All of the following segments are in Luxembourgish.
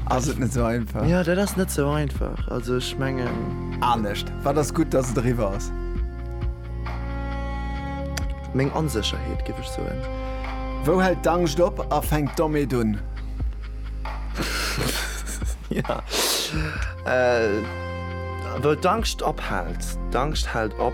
Ass et net sou einfach? Jo, dat ass net sou einfach. Also ech mengen. Anescht, wat ass gutt, datt et eriwwer ass? Meng Onsécherheet, géif ech soen. Wou hält d'Angscht op a fänkt d'Omeet un? Jo, wou d'Angscht ophält. D'Angscht hält op.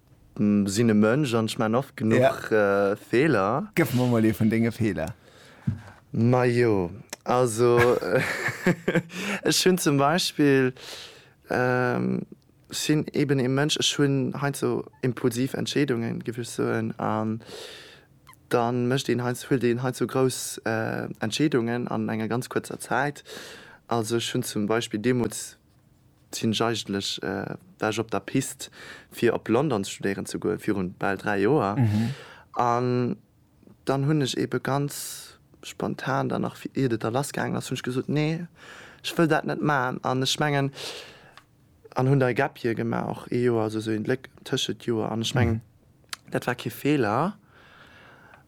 Sinn e Mënsch an ech maan oft genuch Feeler. Gëff mer mol ee vun denge Feeler. Majo, also ech hunn zum Beispill, ech sinn eben ee Mënsch, ech hunn heiansdo impulsiv Entscheedungen, géif ech soen, an da mécht een heiansdo, huelt een heiansdo grouss Entscheedungen an enger ganz kuerzer Zäit. Also ech hunn zum Beispill deemools, Sinn ech eigentlech war ech op der Piste fir op London studéieren ze goen virun bal 3 Joer an dann hunn ech eben ganz spontan dann nach iert et da lass gaangen ass hunn ech gesot nee ech wëll dat net man an ech mengen an hunn da e Gap Year gemaach och ee Joer also sou een Léck tëschent Joer an ech mengen Dat war kee Feeler,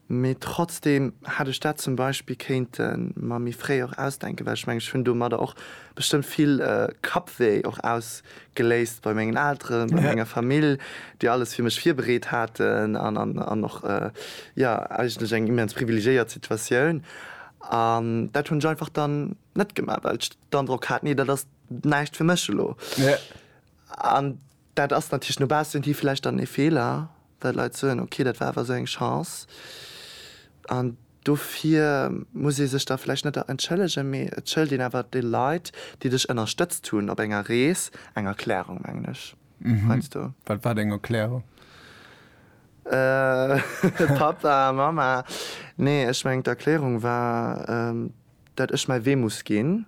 mee trotzdeem hätt ech dat zum Beispill kéinte mer méi fréi och ausdenken, well ech mengen, ech hunn domadder och bestëmmt vill Kappwéi och ausgeléist bei mengen Elteren, bei menger Famill, déi alles fir mech virbereet haten an och, jo, eigentlech eng immens privilegiéiert Situatioun. An dat hunn ech einfach dann net gemaach, well ech d'Androck hat, Nee, dat ass näischt fir mech elo. An Dat ass natierlech no baussen hi vläicht dann ee Feeler, well d'Leit soen, ok, dat war awer esou eng Chance. An dofir muss ee sech da vläicht net entschëllegen, mee et schëlt een awer de Leit, déi dech ënnerstëtzt hunn op enger Rees, eng Erklärung, mengen ech heiansdo. Wat war deng Erklärung? Pappa, Mamma, nee, ech mengen d'Erklärung war, dat ech mäi Wee muss ginn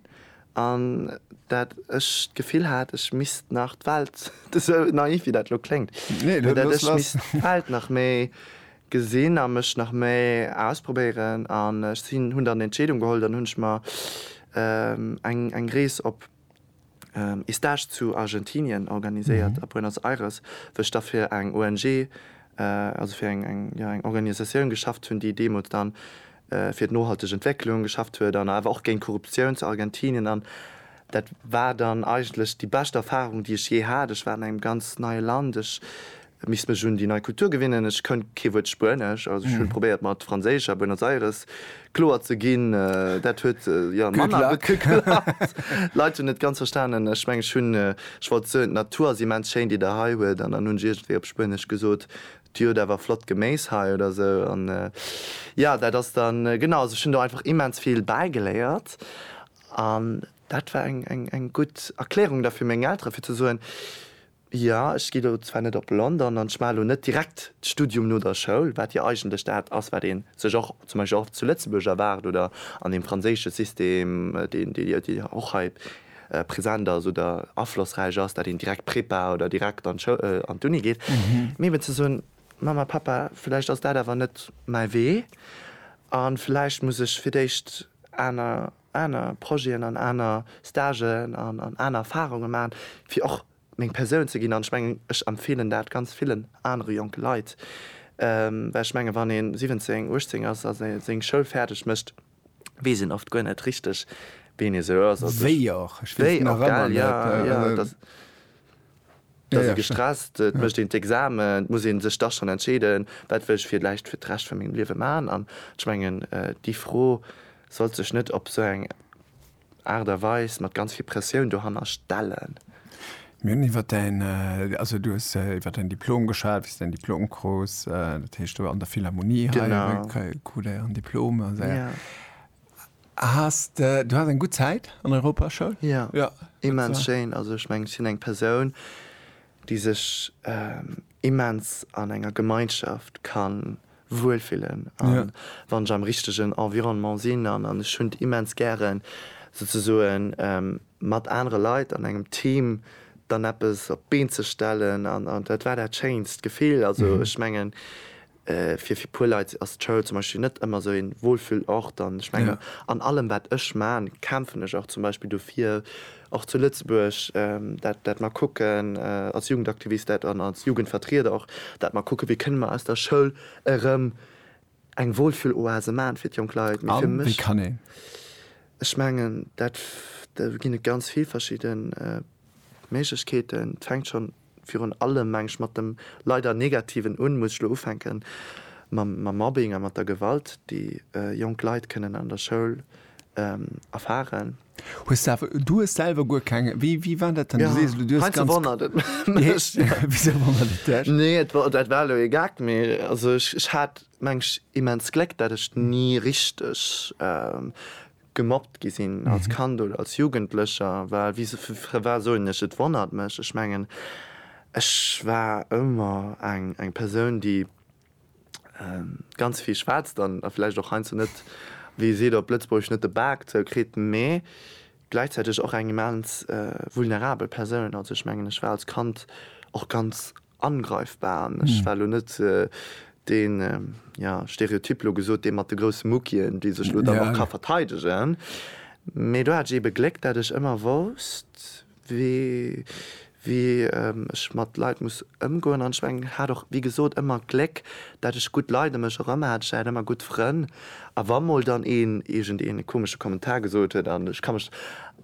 an dat ech d'Gefill hat, ech misst nach d'Welt, esou naiv wéi dat elo kléngt, mee dat ech misst d'Welt nach méi gesinn a mech nach méi ausprobéieren. An ech hunn dann d'Entscheedung geholl, dann hunn ech mer eng Rees op. Estage zu Argentinien organiséiert a Buenos Aires, wou ech da fir eng ONG, also fir eng Organisatioun geschafft hunn, déi deemools da fir d'nohalteg Entwécklung geschafft huet an awer och géint Korruptioun zu Argentinien. An dat war dann eigentlech déi bescht Erfarung, déi ech jee hat. Ech war an engem ganz neie Land. Et misst mech un déi nei Kultur gewinnen. Ech kënnt kee Wuert Spuenesch, also ech hunn probéiert mat Franséisch a Buenos Aires kloer ze ginn. Dat huet jo manner gutt geklappt. D'Leit hunn net ganz verstanen. Ech mengen ech hunn, ech wollt soen, d'Natur ass immens schéin déi der hei huet, an dann hunn ech iergendwéi op Spuenesch gesot, dir hutt awer flott Geméis hei oder esou. An jo, dat ass dann, genau, also ech hunn do einfach immens vill bäigeléiert. An dat war eng gutt Erklärung da fir meng Elteren, fir ze soen, Jo, ech gi lo zwar net op London an ech maache lo net direkt d'Studium no der Schoul, wat jo eigentlech dat ass, wat ee sech och zum Beispill och zu Lëtzebuerg erwaart oder an deem franséische System, deen jo och hei present ass oder aflossräich ass, dat een direkt Prepa oder direkt an d'Uni geet. Mee eben ze soen, Mamma, Pappa, vläicht ass dat awer net mäi Wee a vläicht muss ech fir d'éischt aner aner Projeten an aner Stagen an an aner Erfahrungen maachen, fir och meng Persoun ze ginn. An ech mengen, ech empfeelen dat ganz villen anere jonke Leit, well ech mengen, wann ee 17, 18 ass a seng Schoul fäerdeg mécht, weess een oft guer net richteg, wien ee sou ass. Wéi och, ech weess nach ëmmer net. Et ass ee gestresst, et mécht een d'Examen, et muss ee sech da schonn entscheeden, wat wëll ech villäicht fir d'Recht vu mengem Liewe maachen. An ech mengen, déi Fro sollt sech net op esou eng Aart a Weis mat ganz vill Pressioun dohanner stellen. Mir hunn iwwer däin, also du hues iwwer däin Diplom geschwat, wéi s de däin Diplom krus, dat heescht, du an der Philharmonie hei, krut e en Diplom. Has de, du has eng gutt Zäit an Europaschoul? Jo, immens schéin. Also ech mengen, ech sinn eng Persoun, déi sech immens an enger Gemeinschaft ka wuelfillen a wann ech am richtegen Environnement sinn. An ech hunn et immens gären, souzesoen mat anere Leit an engem Team dann eppes op d'Been ze stellen. An dat war dat schéinst Gefill. Also ech mengen, Fir fir puer Leit ass d'Schoul zum Beispill net ëmmer esou een Wohlfühlort an ech mengen an allem wat ech maan kämpfen ech och zum Beispill dofir och zu Lëtzebuerg dat dat mer kucken als Jugendaktivist dat an als Jugendvertrieder och dat mer kucken wéi kënne mer aus der Schoul erëm eng Wohlfühloase maan fir d'jonk Leit. Mee fir mech, ech mengen dat do ginn et ganz vill verschidden Méiglechkeeten, et fänkt schonn. virun allem, mengen ech, mat dem leider Negativen un, muss ech elo ufänken mam Mobbing a mat der Gewalt, déi jonk Leit kënnen an der Schoul erfaren. Hues de awer, du hues selwer guer keng, wéi, wéi war dat dann? Du sees elo, du hues ganz. Heinze wonnert et mech. Wisou wonnert et dech? Nee, et war, dat war elo ee Gag, mee also ech hat, mengen ech, immens Gléck, dat ech ni richteg gemobbt gi sinn als Kand oder als Jugendlecher, well wie se fir fir war soen ech, et wonnert mech. Ech mengen, ech war ëmmer eng eng Persoun, déi ganz vill schwätzt an a vläicht och heiansdo net, wéi ee seet op Lëtzebuergesch, net de Bak zou kritt, mee gläichzäiteg och eng immens vulnerabel Persoun. Also ech mengen, ech war als Kand och ganz angreifbar an ech war elo net deen, jo, Stereotyp elo gesot, dee mat de grousse Muckien, déi sech elo dann och ka verteidegen. Mee do hat ech eebe Gléck, dat ech ëmmer wousst, wéi, wéi ech mat Leit muss ëmgoen an ech meng hat och, wéi gesot, ëmmer Gléck, Dat ech gutt Leit em mech erëm hat. Ech hat ëmmer gutt Frënn. A wa mol dann een iergend een e komesche Kommentar gesot huet, an ech ka mech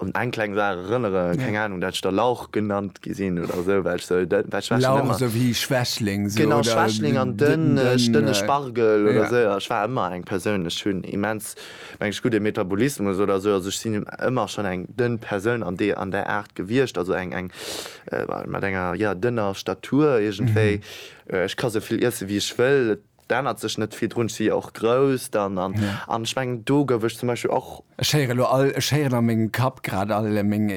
un eng kleng Saach erënnere, keng Anung, dat ech da Lauch genannt gi sinn oder esou, well ech sou dënn, well ech war schonn Lauch, ëmmer, esou wéi Schwächling, esou, genau, oder Schwächling an dënn, dënn, dënn, dënne Spargel oder ja. esou. A ech war ëmmer eng Persoun, ech hunn immens, meng ech, gudde Metabolismus oder esou. Also ech sinn ëmmer schonn eng dënn Persoun an dee, an där Aart gewiescht, also eng, eng, mat enger, jo, dënner Statur iergendwéi. Ech ka sou vill iessen, wéi ech wëll, et ännert sech net vill drun. Ech si jo och grouss dann an ech mengen, do gouf ech zum Beispill och. Ech héieren elo all, ech héieren a mengem Kapp grad all meng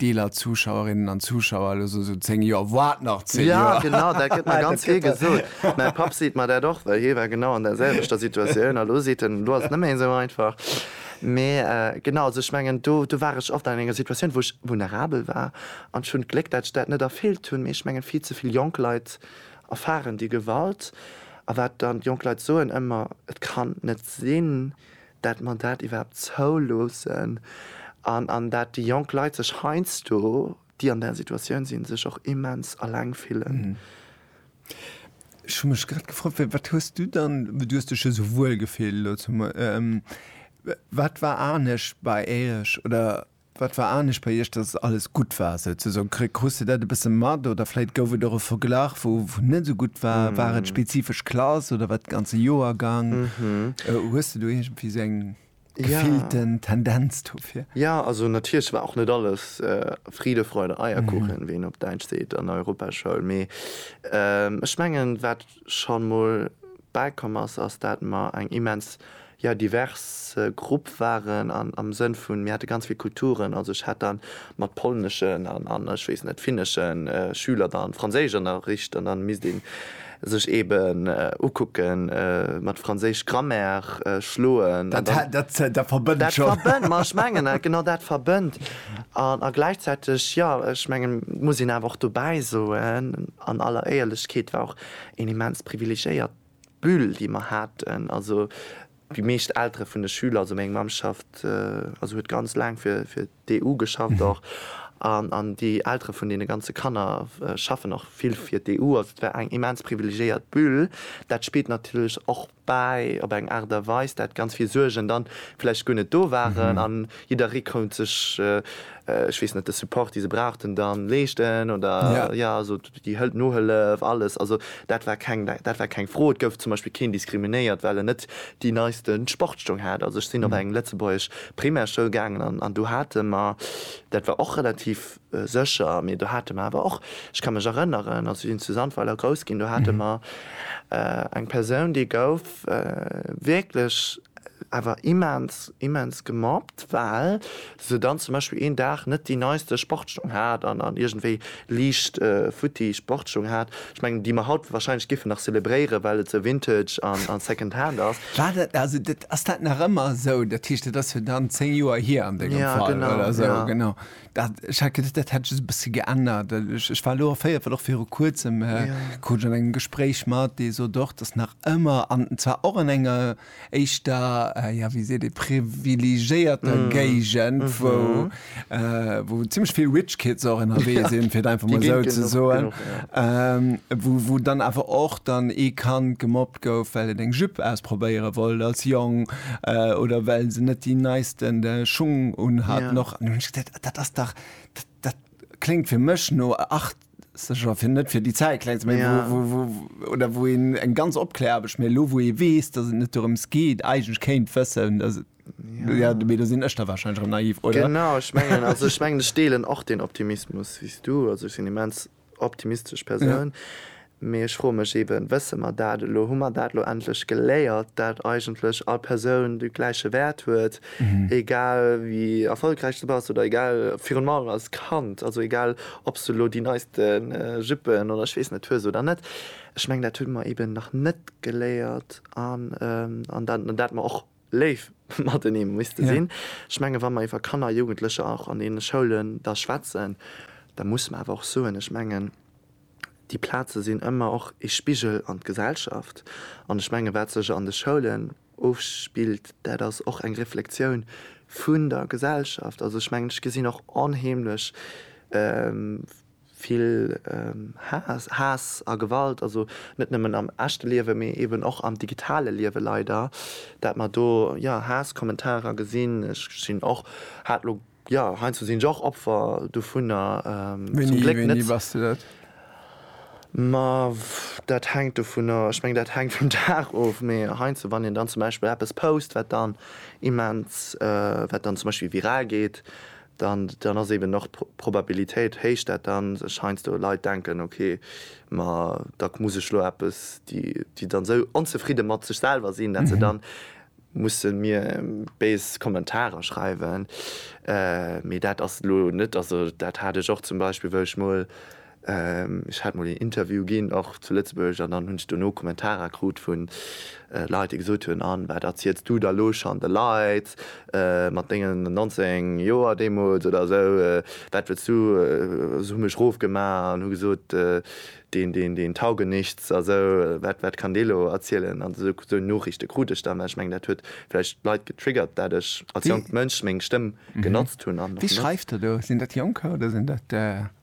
Deeler Zuschauerinnen an Zuschauer elo sou, sou 10 Joer, wat nach 10 Joer? Jo, genau, dat gëtt mer ganz vill gesot. Mäi Papp seet mer dat och, well hie war genau an der selwechter Situatioun a lo seet en, elo ass et net méi esou einfach. Mee genau, also ech mengen, do, do war ech oft an enger Situatioun, wou ech vulnerabel war an ech hunn d'Gléck, dat ech dat net erfüllt hunn. Mee ech mengen, vill ze vill jonk Leit Angst. Erfaren déi Gewalt. A wat dann d'jonk Leit soen ëmmer, Et kann net sinn, dat mer dat iwwerhaapt zouloossen. An an dat déi jonk Leit sech heiansdo, déi an där Situatioun sinn, sech och immens eleng fillen. Ech hu mech grad gefrot, Wéi, wat hues du dann, du hues dech jo esou wuel gefillt elo zum, wat war anescht bei Iech oder? Wat war anescht bei iech, dass et alles gutt war souzesoen? Krus de dat e bësse mat oder vläit gouf et och e Verglach wou net esou gutt war? War et spezifesch Klass oder war et de ganze Joergang? Hues de do iergendwéi esou eng gefillten Tendenz dofir? Jo, also natierlech war och net alles Friede, Freude, Eierkuchen, wéi een op Däitsch seet, an der Europaschoul. Mee ech mengen, wat schonn mol bäikomm ass, ass dat mer eng immens, jo, divers Grupp waren an am Sënn vun, mir hate ganz vill Kulturen. Also ech hat dann mat polneschen an, ech weess net, finneschen Schüler dann Franséisch ënnerricht an dann misst een sech eben ukucken, mat franséisch Grammaire schloen an dann. Dat verbënnt schonn. Dat verbënnt, ma ech mengen dat, genau dat verbënnt. A gläichzäiteg, jo, ech mengen, muss een awer och dobäi soen, An aller Éierlechkeet war och een immens privilegiéiert Bulle, déi mer haten. Also déi meescht Eltere vun de Schüler, also meng Mamm schafft, also huet ganz laang fir d'EU geschafft och, an déi Eltere vun deene ganze Kanner schaffen och vill fir d'EU. Also et war eng immens privilegiéiert Bulle. Dat spillt natierlech och bäi, op eng Aart a Weis, dat ganz vill Suergen dann vläicht guer net do waren an jidderee konnt sech, ech weess net, de Support, dee se brauchten, dann leeschten oder, jo, also déi Hël, Nohëllef, alles, also dat war keng, dat war keng Fro. Et gouf zum Beispill keen diskriminéiert, well en net déi neiste Sportstong hat. Also ech sinn op eng lëtzebuergesch Primärschoul gaangen an do hate mer, dat war och relativ, Sécher, mee do hate mer awer och, ech ka mech erënneren, also sinn zu Sandweiler grouss ginn, do hate mer eng Persoun, déi gouf wierklech awer immens, immens gemobbt, well se dann zum Beispill een Dag net déi neiste Sportsstung hat an iergendwéi liicht futti Sportsstung hat. Ech mengen, déi mer haut wahrscheinlech giffen nach zelebréieren, well et esou vintage an second hand ass. War dat, also ass dat nach ëmmer esou? Dat heescht, dat ass jo dann zéng Joer hier an dengem Fall oder esou, genau. Dat, ech hat geduecht, dat hätt ech e bësse geännert. Ech, ech war elo erféiert, well och viru Kuerzem ja. krut ech an engem Gespréich mat, dee sot och, datt nach ëmmer, an zwar och an enger éischter, ja wéi seet ee, privilegéierter mm. Géigend, mm -hmm. wou, äh, wou ziemlech vill Rich Kids och ënnerwee ja. sinn, fir einfach mal sou ze soen, ja. ähm, wou, wou dann awer och dann ee Kand gemobbt gouf, well en eng Jupe ausprobéiere wollt als Jong oder well se net déi neisten Schung unhaten. Och an hunn ech gesot, dat ass dach, dat kléngt fir mech no achtzeger, fir net fir déi Zäit klengt ze maachen, wou, wou, wou oder wou een eng ganz Opkläraarbecht, mä elo wou ee weess, datt et net dorëms geet, eigentlech kéint wëssen, datt et, jo, mee do sinn ech da warscheinlech erëm naiv, oder? Genau, ech mengen, also ech mengen, ech deelen och deen Optimismus wéi s du. Also ech sinn immens optimistesch Persoun, mee ech froe mech eeben, wësse mer dat elo, hu mer dat elo endlech geléiert, dat eigentlech all Persoun de gläiche Wäert huet, egal wéi erfolgräich s de bass oder egal, virun allem als Kand, also egal ob s de elo déi neiste Juppen oder ech weess net hues oder net. Ech mengen dat hu mer eeben nach net geléiert an dat mer och. Léif matenee muss de sinn. Ech menge wa mer iwwer Kanner a Jugendlecher och an deene Schoulen da schwätzen, da muss mer awer och soen, ech mengen déi Plaze sinn ëmmer och ee Spigel an d'Gesellschaft. An ech menge wat sech an de Schoulen ofspillt, dat ass och eng Reflexioun vun der Gesellschaft. Also ech mengen ech gesinn och onheemlech, Vill Haass a Gewalt, also net nëmmen am echte Liewen, mee eben och am digitale Liewen leider, dat mer do jo Haass-Kommentarer gesinn. Ech sinn och, hat elo, jo heiansdo sinn ech och Opfer dovunner, zum Gléck net. Wéini bass de dat? Ma dat hänkt dovunner, ech mengen dat hänkt vum Dag of, mee heiansdo wann een dann zum Beispill eppes post wat dann immens, wat dann zum Beispill viral geet, dann ass eben och d'Probabilitéit héich, dat dann sech heiansdo Leit denken, ok, ma da muss ech lo eppes, déi dann esou onzefridde mat sech selwer sinn, dat se dann musse mir béis Kommentarer schreiwen. Mee dat ass lo net, also dat hat ech och zum Beispill, wou ech mol Ech hat mol een Interview ginn, och zu Lëtzebuerg, an dann hunn ech dono Kommentarer krut vu Leit, déi gesot hunn, An wat erziels du da lo schonn de Leit mat dengen 19 Joer deemools oder esou? Wat wëlls du? Hu mech rofgemaach an hu gesot, deen, deen, deen tauge nichts a sou. Wat, wat kann dee lo erzielen? An esou, esou Nooriichte krut ech dann. Mä ech mengen, dat huet vläicht d'Leit getriggert, dat ech als jonkt Mënsch meng Stëmm genotzt hunn an och benotze. Wie schreift da do? Sinn dat Jonker oder sinn dat.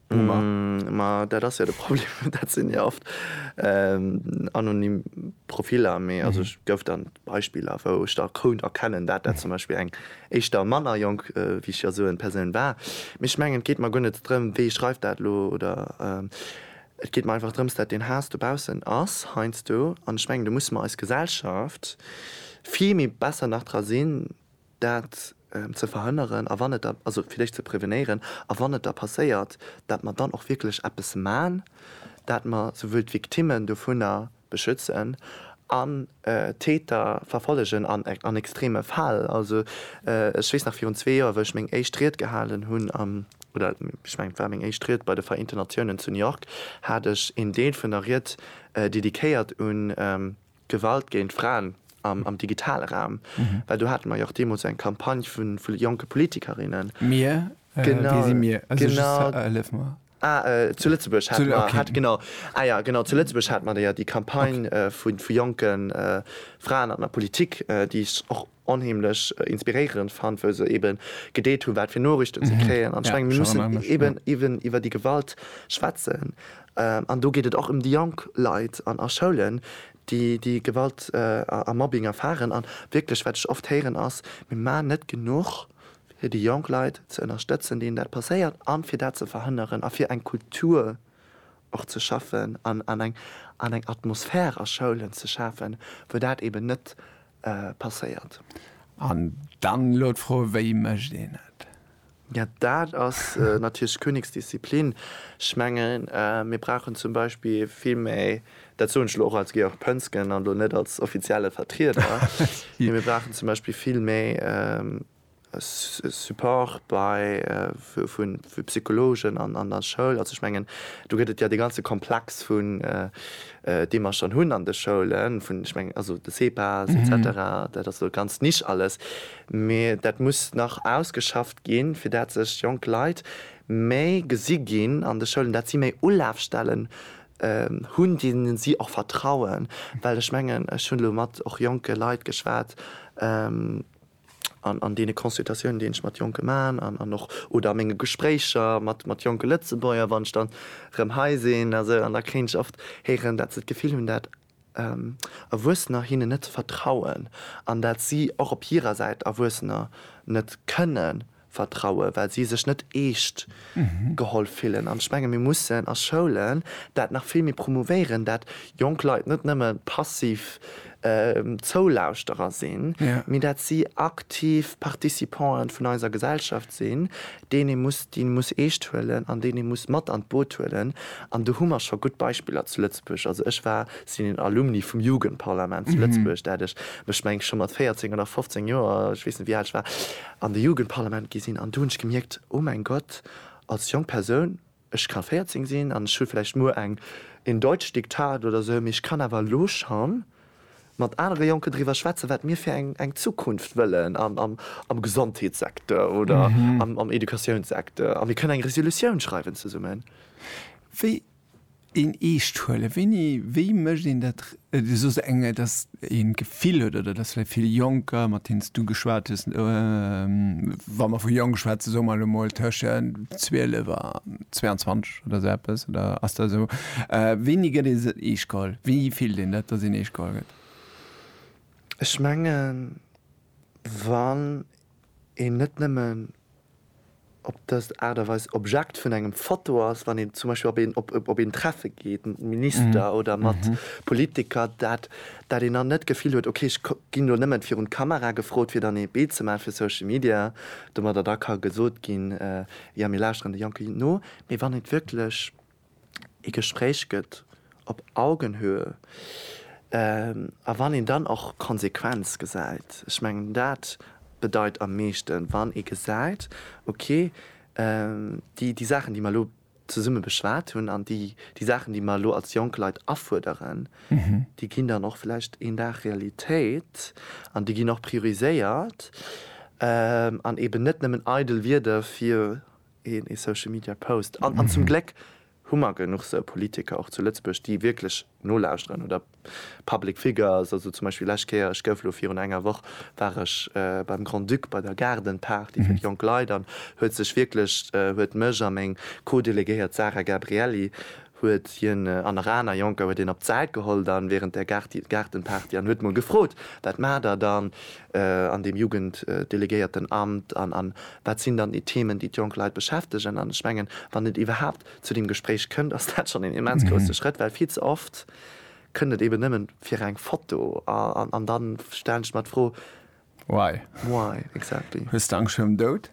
Boomer. Ma dat ass jo de Problem, dat sinn jo oft anonym Profiller. Mee also ech gouf dann Beispiller, wou ech da kount erkennen, dat dat zum Beispill eng éischter manner jonk, wéi ech jo soen, Persoun war. Mee ech mengen, et geet mer guer net drëm, wee schreift dat elo, oder et geet mer einfach drëms, dat deen Haass dobaussen ass heiansdo. An ech mengen, do musse mer eis Gesellschaft vill méi besser nach dra sinn, dat ze verhënneren a wann et da, also fir déch ze prevenéieren, a wann et da passéiert, dat mer dann och wierklech eppes man, dat mer souwuel d'Victimmen dovunner beschützen an d'Täter verfollegen an extreme Fäll. Also ech weess nach virun zwee Joer, wou ech meng éischt Ried gehalen hunn am, oder ech mengen et war meng éischt Ried bei de Vereenten Natiounen zu New York, hat ech een Deel vun der Ried dediquéiert un, Gewalt géint Fraen am digitale Raum, well do hate mer jo och deemools eng Campagne vu jonke Politikerinnen. Mir? Wie si mir? Hëllef mer. Ah, zu Lëtzebuerg hate mer. Ok. Genau. Ah ja, genau, zu Lëtzebuerg hate mer jo déi Campagne vu jonke Fraen an der Politik, déi ech och onheemlech inspiréierend fannt, wou se eben gedeelt hunn, wat fir Noriichten se kréien. An ech mengen, mir mussen eben iwwen iwwer déi Gewalt schwätzen. An do geet et och ëm déi jonk Leit an a Schoulen, déi déi Gewalt a Mobbing erfaren. An wierklech, wat ech oft héieren, ass, Mir maachen net genuch, fir déi jonk Leit ze ënnerstëtzen, deenen dat passéiert, a fir dat ze verhënneren a fir eng Kultur och ze schaffen an eng Atmosphär a Schoulen ze schafen, wou dat eben net passéiert. An dann elo d'Fro, Wéi mécht een et? Jo, dat ass natierlech d'Königsdisziplin. Ech mengen, mir brauchen zum Beispill vill méi, dat soen ech elo och als Georg Pönsgen an elo net als offizielle Vertrieder, mee mir brauchen zum Beispill vill méi Support bei vu Psychologen an der Schoul. Also ech mengen, do gëtt et jo dee ganze Komplex vun, dee mer schonn hunn an de Schoulen, vun, ech mengen, also de CEPAS et cetera, dat ass elo ganz niche alles, mee dat muss nach ausgeschafft ginn, fir dat sech jonk Leit méi gesi ginn an de Schoulen, dat si méi Ulafstellen hunn, deene si och vertrauen. Well ech mengen, ech hunn elo mat och jonke Leit geschwat, an deene Consultatiounen, déi ech mat Jonke man, an och oder a menge Gespréicher mat jonke Lëtzebuerger, wann ech dann erëm hei sinn a sou, an da kréien ech oft héieren, dat se d'Gefill hunn, dat Erwuessener hinnen net vertrauen an dat si och op hirer Säit Erwuessener net kënnen Vertrauen, well si sech net eescht geholl fillen. An ech menge mir mussen a Schoulen dat nach vill méi promouvéieren, dat jonk Leit net nëmme passiv Zoulauschterer sinn, mee dat si aktiv Participanten vun eiser Gesellschaft sinn, deen ee muss déi muss eescht huelen an deen ee muss mat an d'Boot huelen. An do hu mer scho gutt Beispiller zu Lëtzebuerg. Also ech war, sinn een Alumni vum Jugendparlament zu Lëtzebuerg, dat ech mech meng scho mat 14 oder 15 Joer, ech weess net wéi al ech war, an de Jugendparlament gi sinn an do hunn ech gemierkt, oh mäin Gott, als jonk Persoun, ech ka 14 sinn an ech hu vläicht muer eng in Deutsch Diktat oder esou, mee ech kann awer elo scho mat anere Jonken driwwer schwätzen, wat mir fir eng Zukunft wëllen am Gesondheetssecteur oder am Educatiounssekteur a mir kënnen eng Resolutioun schreiwen zesummen. Wéi Een eescht huelen, wéini, wéi mécht een dat? Du soos eng, dass een d'Gefill huet, oder dass vläicht vill Jonker, mat deenen s du geschwat hues, wa mer vu jonk schwätzen, soe mer elo emol tëschent 12 a 22 oder esou eppes, oder ass dat esou, wéini gëtt ee eescht geholl? Wéini fillt een dat, dass een eescht geholl gëtt? Ech mengen, wann een net nëmmen op dës Aart a Weis Objekt vun engem Foto ass, wann een zum Beispill op een Treffe geet mat Minister oder mat Politiker, dat dat een dann net d'Gefill huet, ok ech ginn elo nëmmen virun d'Kamera gefrot, fir dann ee Bild ze maachen fir Social Media, domadder da ka gesot ginn, jo mir lauschteren de Jonke no, mee wann et wierklech. ee Gespréich gëtt op Augenhöhe a wann een dann och Konsequenz gesäit. Ech mengen dat bedeit am meeschten, wann ee gesäit, okay, déi Saachen déi mer elo zesumme beschwat hunn an déi Saachen déi mer elo als jonk Leit afuerderen, déi ginn dann och vläicht een Dag Realitéit an déi ginn och prioriséiert an eeben net nëmmen eidel Wierder fir een ee Social Media Post an an zum Gléck hu mer genuch sou Politiker och zu Lëtzebuerg déi wierklech nolauschteren oder Public Figures, also zum Beispill lescht Kéier, ech gouf elo virun enger Woch war ech beim Grand-Duc bei der Garden Party fir déi jonk Leit an huet sech wierklech huet mech a meng Co-Delegéiert Sarah Gabrielli huet hien an nach aner Jonker huet hien op d'Säit geholl dann während der Gaartenparty an huet mol gefrot, Wat maacht der dann an deem Jugenddelegéiertenamt an wat sinn dann déi Themen, déi d'jonk Leit beschäftegen? An ech mengen, wann et iwwerhaapt zu deem Gespréich kënnt, ass dat schonn een immens grousse Schrëtt, well vill ze oft kënnt et eben nëmmen fir eng Foto an dann stellen ech mer d'Fro, Why? Why exactly? Hues de Angscht virum Doud?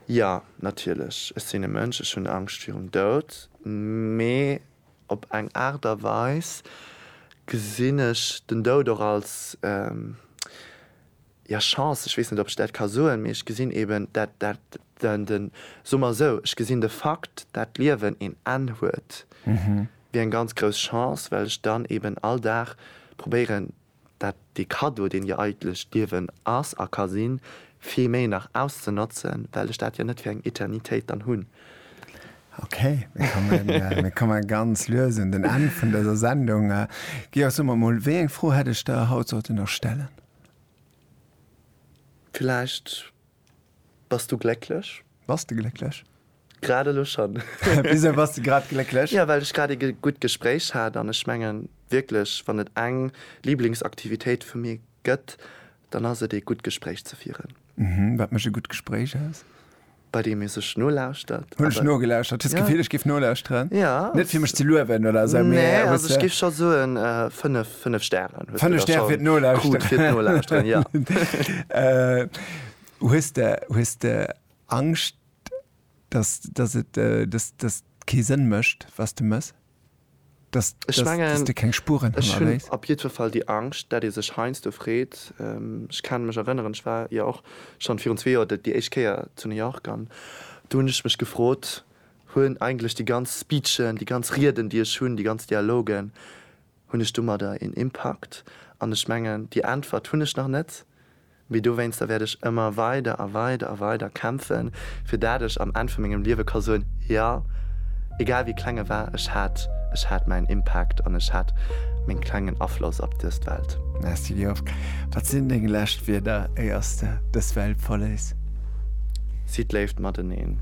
Jo, natierlech, ech sinn e Mënsch, ech hunn Angscht virum Doud, mee op eng Aart a Weis gesinn ech den Doud och als, ja, Chance, ech weess net, ob ech dat ka soen, mee ech gesinn eeben dat, dat, den, soe mer esou, ech gesinn de Fakt, dat d'Liewen een Enn huet, wéi eng ganz grouss Chance, well ech dann eeben all Dag probéieren, dat dee Cadeau, deen jo eigentlech d'Liewen ass a ka sinn, vill méi nach auszenotzen, well ech dat jo net fir eng Eternitéit dann hunn. Okay, mir komme ganz lues un den Enn vun dëser Sendung. Georg, so mer emol, wéi eng Fro hätt ech der haut sollte nach stellen? Villäicht. Bass du glécklech? Bass de glécklech? Grad elo schonn. Wisou bass de grad glécklech? Jo, well ech grad ee gutt Gespréich hat an ech mengen wierklech, wann et eng Liblingsaktivitéit vu mir gëtt, dann ass et ee gutt Gespréich ze fieren. Mhm, wat mécht e gutt Gespréich aus? Bei deem ee sech nolauschtert. Hunn ech nogelauschtert. Hues d'Gefill, ech géif nolauscheren? Ja. Net fir mech ze luewen oder esou, mee. Nee, also ech géif scho soen, fënnef 5 Stären. 5 Stären fir d'Nolauschteren. Hues de, hues de Angscht, dass, dass et, dass, dass et kee Sënn mécht, was de méchs? Dass, dass, dass de keng Spuren hannerléis? Ech hunn op jiddwer Fall déi Angscht, dat ee sech heiansdo freet. Ech ka mech erënneren, ech war jo och schonn virun zwee Joer déi éischt Kéier zu New York an do hunn ech mech gefrot, hunn eigentlech déi ganz Speechen, déi ganz Rieden, déi ech hunn, déi ganz Dialogen, Hunn ech domadder een Impakt? An ech mengen, déi Äntwert hunn ech nach net, mee dowéinster wäert ech ëmmer weider a weider a weider kämpfen, fir dat ech am Enn vu mengem Liewe ka soen, Jo, egal wéi kleng e war, ech hat, ech hat mäin Impakt an ech hat meng klengen Afloss op dëst Welt. Merci Georges. Wat sinn deng lescht Wierder, éiers de dës Welt verléiss? Sidd Léift mateneen.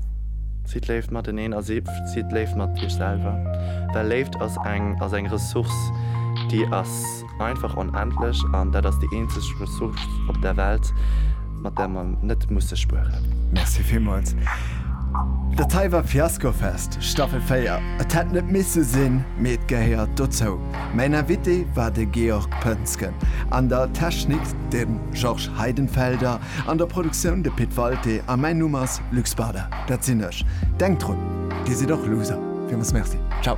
Sidd Léift mateneen a sidd Léift mat iech selwer. Well Léift ass eng ass eng Ressource, déi ass einfach onendlech an dat ass déi eenzeg Ressource op der Welt, mat där mer net musse spueren. Merci villmools. Dat hei war Fiaskofest, Staffel 4. Et hätt net misse sinn, mee et gehéiert dozou. Mäin Invité war de Georg Poensgen, an der Technik de Georges Heidenfelder. An der Produktioun de Pit Walté a mäin Numm ass Luc Spada, dat sinn ech. Denkt drun, Dir sidd och Loser fir ons. Merci, ciao.